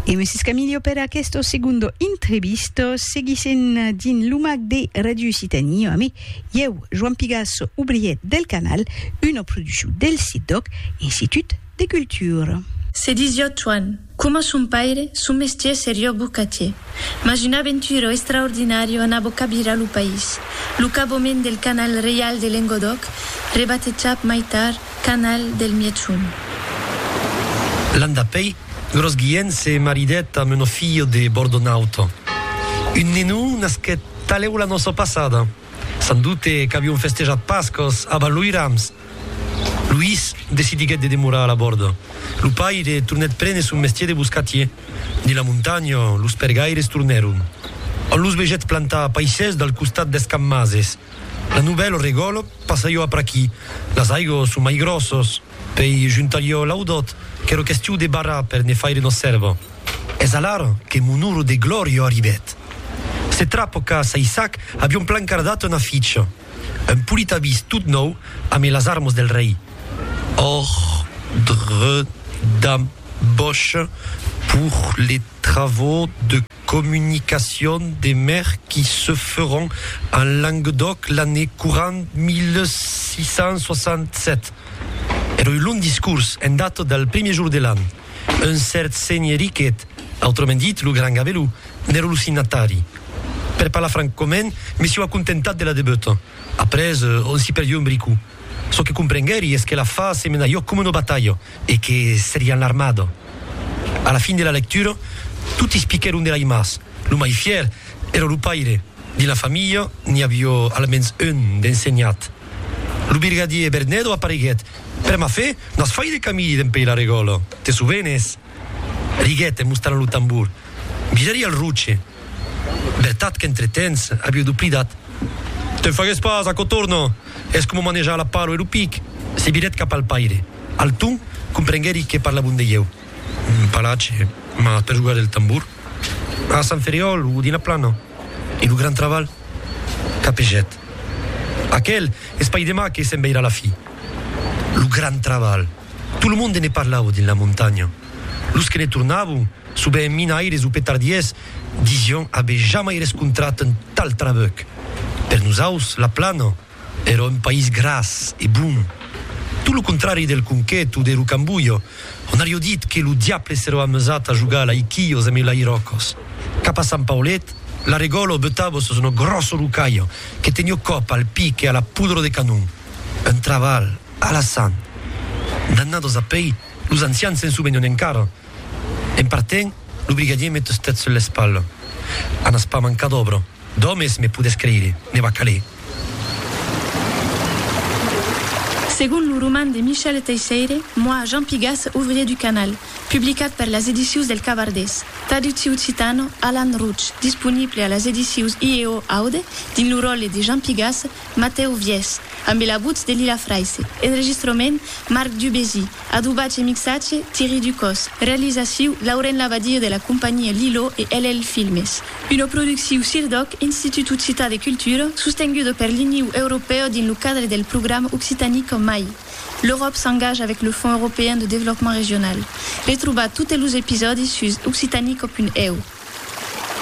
E me s'escamilio per aquesto segundo intrevisto, seguissent dins lo mag de Radio Occitanie amé ieu, Joan Pigasso, obrier del Canal, una produccion del CIDOC, Institut de Cultura. Se disiá Joan, coma son paire, son mestier seriá bocatier. Mas un aventuro extraordinario anava cabirar lo país, lo cabomènt del Canal Reial de Lengodòc, rebatejat mai tard, Canal del Mièchon. L'an dapèi, Gròs Guilhèn se maridèt amb una filha de Bordonaut. Un nenon nasquèt talèu la nòça passada. San doute qu'avion festejat Pascas a Val-Loirams. Luís decidiguèt de demorar a la Bòrda. Lo paire tornèt prene son mestier de boscatier. Dins la montanha, los pergaires tornèron. On los vegèt plantar paisses del costat d'Escammases. La novèl regòl passa jo apr'aquí. Las aigos son mai gròssos, pei juntar jo l'audòt qu'èro questiu de barrar per ne faire nos sèrva. Es alar que mon oro de glòria arribèt. Se trapo qu'a Saissac avion plancardat una ficha, un polit avís tot nòu ame las armas del rei, Ordre d'embauche pour les. travaux de communication des mers qui se feront en Languedoc l'année courant 1667. Era un long discors en data del primier jour de l'an. Un cèrt senhè Riquet, autrament dit lo Gran Gabelou, n'èra lo signatari. Per parlar francament, me sieu acontentat de la debeuta. Après, on s'i perdieu un bricou. Çò que comprenguèri es que la fa se menaió coma una batalha. E que serián l'armada. A la fin de la lectura, toti spiquèron de l'aimas. Lo mai fièr èra lo paire. Dins la familha, n'i avió almens un d'ensenhat. Lo birgadier Bernedo apareguèt. Per ma fe, n'as fai de camí dempuèi la regòla, te sovenes? riguèt en mostranlo tambor. Mirari al roche. Vertat qu'entretens aviu doplidat. Te'n fagues pas, aquò torna! Es coma manejar la palo e lo pic! Se virèt cap al paire. Alton comprenguèri que parlavon de ieu. Palache, mas per jogar del tambor? A Sant Ferriòl o dins la plana? E lo gran trabalh? Capegèt. Aquel es pas demà que se'n veirà la fi. Lo gran trabalh! Tot lo monde ne parlava dins la montanha. Los que ne tornavan, sovent minaires o petardiers, disián aver jamai rescontrat un tal trabuc. Per nosaus, la Plana èra un país gras e bon. Tot lo contrari del Conquet o de Rocambolha, ont aviá dit que lo diable s'èra amusat a jogar a l'aiquilhos amb lairòcos. Cap a Sant Paulet, l'arregòlo butava sus una gròssa rocalha que teniá còp al pic e a la pudra de canon. Un trabalh! Alassane. Dannados a pei, los ancians se'n suvenhon encara. En partent, lo brigadier me tustèt sul l'espalha. A n'as pas mancat d'òbra, d'òmes, me podes creire, ne va caler. Segon lo roman de Michel Teisseire, Moi, Jean Pigas, ouvrier du canal, publicat per las edicius del Cavardés, traductiu occitano, Alan Routch, disponible a las edicius IEO Aude dins lo ròtle de Jean Pigas, Matèu Vièch, ambe la votz de Lila Fraisse. Enregistrament, Marc Dubézy. Adobatge e mixatge, Thierry Ducos. Realizaciu, Lauren Labadie de la companhia Lilo e LL Filmes. Una producciu CIRDOC, Institut Occitan de Cultura, sostenguda per l'Iniu Europèu dins lo cadre del programa Occitanie qu'en mai. L'Euròp s'engaja avec le Fonds Européen de Développement Régional. Retrobatz totes los episòdis sus occitaniecop.eu.